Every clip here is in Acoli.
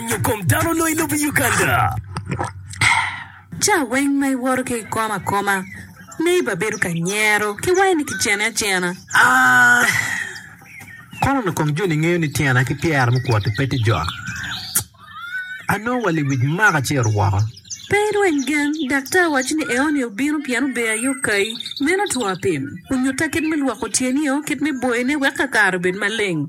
Nyo kom dano onongo i lobo Uganda. Ca weng ma iwoto ki ikomo akoma, neighbor bedo ka nyero ki wai ni ki cene acena. A. Kono kong joni ngeyo ni tyena ki pyera mukwoti pe ti jok. Anongo wa liwic maka ci eru woko. Pe irweny gen, daktar waco ni eoni obino pien obeyo aye okayi. Meno two apim. Onyutta kit me lwoko tyeni o, kit me boyone wek kakare obed maleng.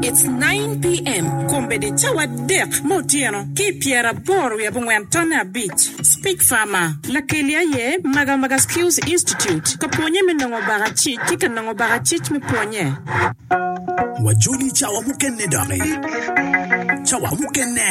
It's nine PM, kombeddi cawa adek me otyeno ki i pyeraboro wiye abongwen tonne abic. Speak Farmer. Lakelli aye Magamaga Skills Institute ka pwonye me nongo bakacic ki ka nongo bakacic me pwonye. Wajoli cawa mukene doki. Cawa mukene.